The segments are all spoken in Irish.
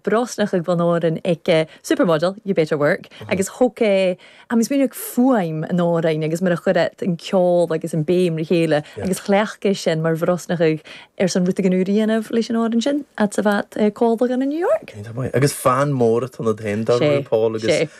breosla chuig Bhun Árainn ag supermodel, you better work, agus thug é am is minic fuaim an Árainn agus mar a chuir an ceol agus an béim le chéile agus chleacht é sin mar bhreosla chuig ar son ruta gan úr dhéanamh leis an Árainn sin at sa bhat cóilbeagán in New York. Agus fan mór at ionad féin dar RuPaul agus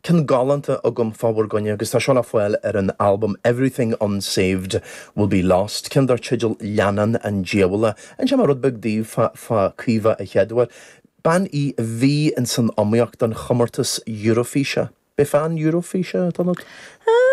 Ceann galánta agam fá bhur gcoinne agus tá seo le fáil ar an albam Everything Unsaved Will Be Lost, ceann dar teideal Leannán an Diabhail. Inseoidh mé rud beag daoibh fá Caoimhe a chéaduair. Bean í a bhí ins an iomaíocht don chomórtas Eurofíse. B'fhéidir fan Eurofíse atá ionat? Ehm.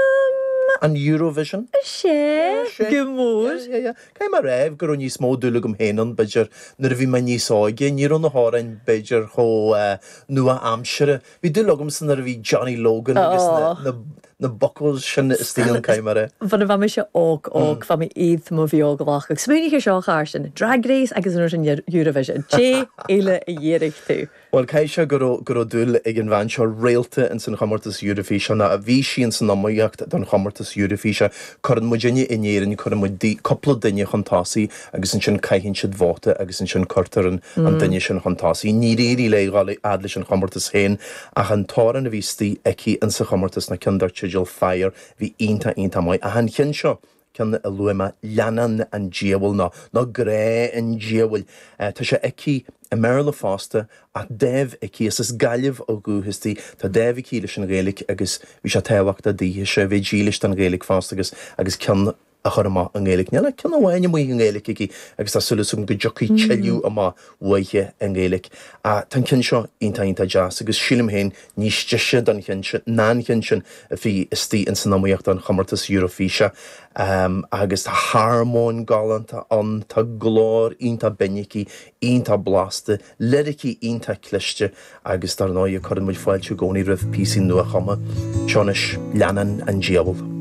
An Eurovision? Sea. Sea. Go mór. Yeah, yeah, yeah. Caithfidh mé a rá go raibh níos mó dúil agam féin ann, b'fhéidir, nuair a bhí mé níos óige. Ní raibh na hamhráin, b'fhéidir, chomh nua-aimseartha Bhí dúil agam san uair a bhí Johnny Logan agus na, na buachaillí sin istigh ann ceamara. Bhuel, bheadh mise olc, olc, bheadh mé iad mo bheag a ghlacadh. Smaoinigh ar seo, Carson, Drag Race agus an fhoireann Eurovision, dé eile a dh'iarradh tú. Bhuel, caithfidh sé go raibh, go raibh dúil ag an bhean seo Reylta ins an chomórtas Eurofíse, nó bhí sí ins an iomaíocht don chomórtas Eurofíse. Cuireann muidinne in Éirinn, cuireann muid dui, cúpla duine chun tosaigh agus ansin caitheann siad vóta agus ansin cuirtear an duine sin chun tosaigh. Níor éirigh léi dul a fhad leis an chomórtas féin ach an t-amhrán a bhí istigh aici in sa chomórtas ná ceann dar teideal Fire bhí iontach iontach maith ach an ceann seo, ceann a luaigh mé, Leannán an Diabhail nó nó Grá an Diabhail, tá sé aici i mBéarla fosta ach dáimh aici, is as Gaillimh ó dhúchas di, tá dáimh aici leis an Ghaeilge agus bhí sé tábhachtach daoithese a bheith dílis don Ghaeilge fosta agus agus ceann a chur amach i nGaeilge. Níl ach ceann amháin amuigh i nGaeilge aici agus tá súil agam go dtiocfaidh tuilleadh amach uaithe i nGaeilge. Tá an ceann seo iontach, iontach deas agus sílim féin níos deise don ná an ceann sin a bhí istigh ins an iomaíocht don chomórtas Eurofíse. Agus tá harmóin galánta ann, tá glór iontach binn aici, iontach blasta, liricí iontach cliste agus dar ndóighe cuireann muid fáilte i gcónaí roimh phíosaí nua-chumtha. Seo anois Leannán an Diabhail.